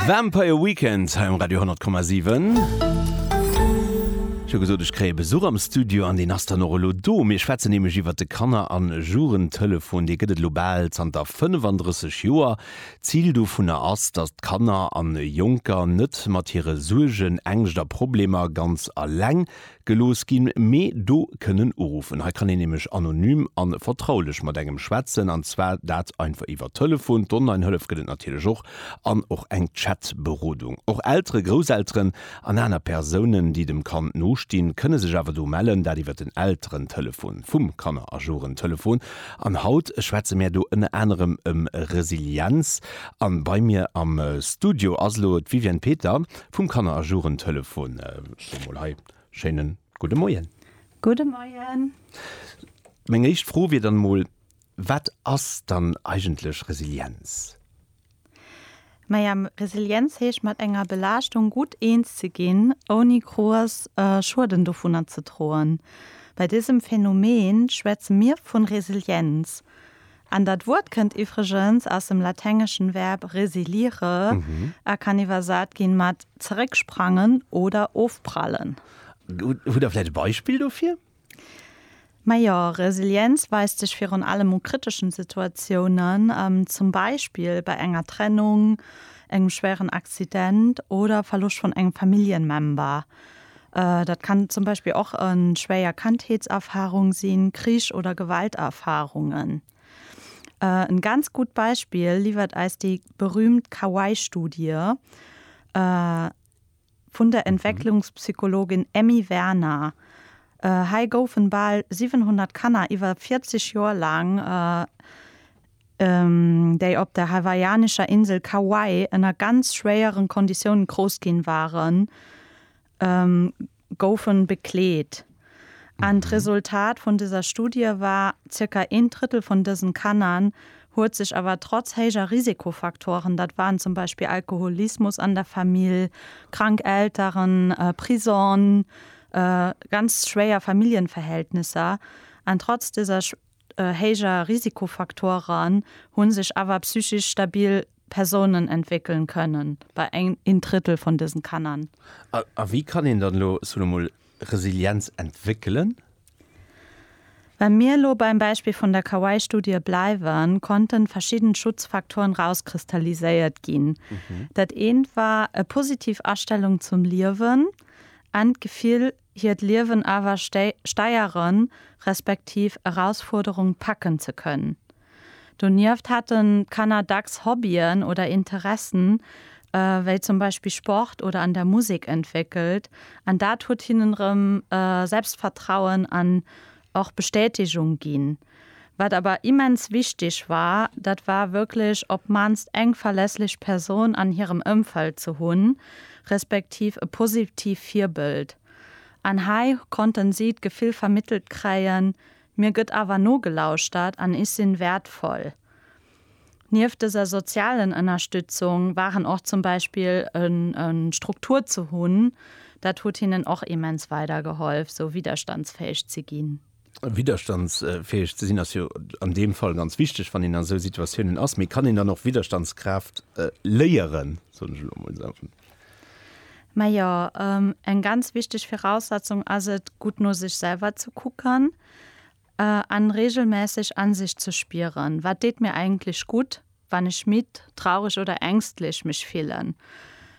Vampire Weekend hei um Radio 10,7. Ech hu gesot, ech kréie Besuch am Studio an deen ass dann och elo do. Mir schwätzen nämlech iwwert de Kanner a Jugendtelefon. Dee gëtt et elo bal zanter 35 Joer. D'Zil dovunner ass, datt d'Kanner a Jonker net mat hire Suergen, Ängscht a Problemer ganz eleng Gelooss ginn, mee do kënnen uruffen. Hei kann een nämlech anonym a vertraulech mat engem schwätzen, an zwar dat einfach iwwer Telefon. D'Onlinehëllef gëtt et natierlech och, an och eng Chatberodung. Och Elteren, Grousselteren an aner Persounen, déi dem Kand no stinn, kënne sech awer do mellen, dat iwwer den Elterentelefon vum Kannerajorenttelefon. An haut schwätze mär do ënner anerem ëm Resilienz. A bei mir am Studio ass elo d'Viviane Peter Vum Kanner a Jugendtelefon scho mol hei schéine gudde Moien. Gudde Moien. Meng éischt Fro wier dann emol, Wat ass dann eigentlech Resilienz? Maja, Resilienz heescht mat enger Belaaschtung gutt eens ze ginn, ouni grouss Schueden dovunner ze droen. Bei dësem Phänomen schwätze mir vun Resilienz. An dat Wuert kënnt iwwregens aus dem laténgeschen Verb resilire a kann iwwersat ginn mat zerécksprangen oder ofprallen. Hutt der vläicht e Beispill dofir? Majo, Resilienz weist sech virun allem u kriteschen Situatiounen, zum Beispill bei enger Trennung, engem schwéieren Accident oder Verloscht vun engem Familljenmember. Dat kann zum Beispill och e schwéier Kandheetserfarung sinn, Krich oder Gewalterfarungen. E ganz gutt Beispill liwwert eis déi berüümt Kawaii-Studie vun der Entwécklungspsychologin Emmy Werner. Hei goufen bal 700 Kanner iwwer 40 Joer laang déi op der hawaiianescher Insel Kauai ënner ganz schwéieren Konditioune grouss ginn waren, goufen bekleet. An d'Resultat vun dëser Studie war, Zirka een Drëttel vun dësen Kanner huet sech awer trotz héijer Risikofaktoren, dat waren zum Beispill Alkoholismus an der Famill, krank Elteren, Prison, ganz schwéier Familljenverhältnisser, an trotz dëser héijer Risikofaktoren hunn sech awer psychisch stabil Persounen entwéckelen kënnen bei een Drëttel vun dësen Kannern. A wéi kann een dann elo solo mol Resilienz entwéckelen? Wa mir elo beim Beispill vun der Kauai-Studie bleiwen, konnten verschidden Schutzfaktoren rauskristalliséiert ginn. Dat eent war e positiv Astellung zum Liewen an d'Gefill hiert Liewen awer steieren, respektiv Erausfuerderung packen ze kënnen. Donieft hätten d'Kanner dacks Hobbyen oder Interessen, wéi zum Beispill Sport oder an der Musek, entwéckelt an dat huet hinnen erëm Selbstvertrauen an och Bestätegung ginn. Wat awer immens wichteg war, dat war wierklech op d'mannst eng verlässlech Persoun an hirem Ëmfeld ze hunn, respektiv e positiivt Virbëld. An hei konnten si d'Gefill vermittelt kréien, Mir gëtt awer nogelauschtert an ech sinn wäertvoll. Nieft dëser sozialen Ënnerstützung waren och zum Beispill e Struktur ze hunn, dat huet hinnen och immens weidergehollf, sou widderstandsfäeg ze ginn. Widderstandsfäeg ze sinn ass jo an deem Fall ganz wichteg, wann een an esou Situatiounen ass. Mee kann een dann och Widderstandskraaft léieren, soen ech elo emol esou? Majo, eng ganz wichteg Viraussetzung ass et, gutt no sech selwer ze kucken an reegelmässeg an sech ze spieren, Wat deet mir eigentlech gutt? wann ech midd, traureg oder ängstlech mech fillen?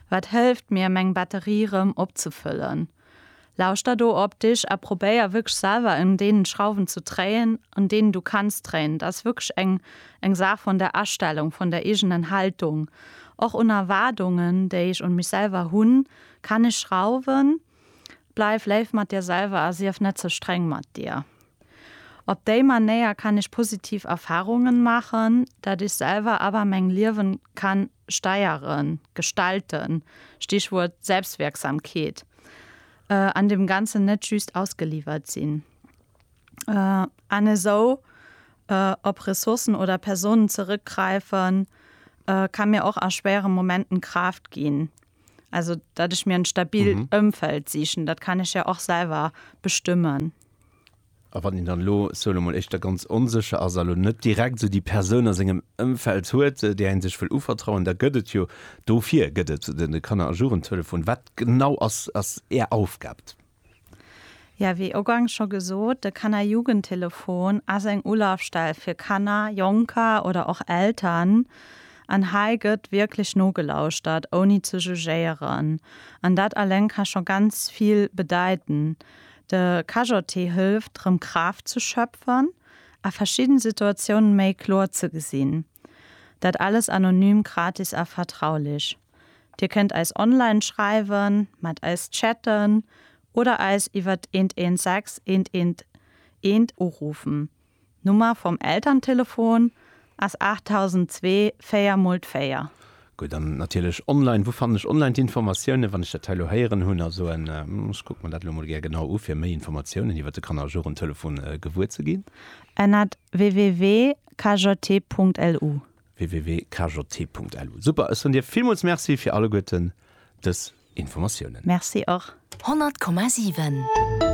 Wat hëlleft mir, meng Batterie rëm opzefëllen? Lauschter do op dech a probéier wierklech selwer un deenen Schrauwen ze dréien, un deenen du kanns dréien. Dat ass wierklech eng eng Saach vun der Astellung, vun der eegenen Haltung, och un Erwaardungen, déi ech un mech selwer hunn. Kann ech schrauwen? Bleif léif mat dir selwer a sief net ze streng mat dir. Op déi Manéier kann ech positiv Erfahrungen machen, dat ech selwer awer meng Liewen kann steieren, gestalten, Stichwuert Selbstwirksamkeet, an dem Ganzen net just ausgeliwert sinn, an esou op Ressourcen oder Personen zeréckgreifen kann mir och a schwéieren Momenten Kraaft ginn. Also dat ech mir en stabil mhm. Ëmfeld sichen, dat kann ech ja och selber bestëmmen. A wann den dann lo solo mal echtter ganz onsecher as lo net direkt so die Person aus engem Ëmfeld huet, äh, der en sech will uvertrauen, da gëtt et jo dofir gëtt et den Kanner a Jugendtelefon. Wat genau ass ass är Aufgabt? Jo, wéi ugangs scho gesot, de Kannerjugendtelefon ass eng Ulafstell fir Kanner, Jonker oder och Eltern. An hei gëtt wierklech nogelauschtert, ouni ze jugéieren. An dat alleng ka scho ganz vill bedeiten. De KJT hëlleft, rëm Kraaft ze schöpfen a verschidden Situatiounen méi kloer ze gesinn. Dat alles anonym, gratis a vertraulich. Dir kënnt eis online schreiwen, mat eis chatten oder eis iwwert 116 111 urufen. D'Nummer vum Elterntelefon ass 8002 4 mol d'Véier. Gutt, an natierlech online. Wou fannen ech online d'Informatiounen, wann ech dat hei elo héieren hunn a soen, ech kucke mer dat elo emol gär genau u fir méi Informatiounen iwwert de Kanner a Jugendtelefon gewuer ze ginn? Ennert www. www.kjt.lu. www.kjt.lu. Super, ech soen dir villmools Merci fir alleguerten dës Informatiounen. Merci och. 100,7.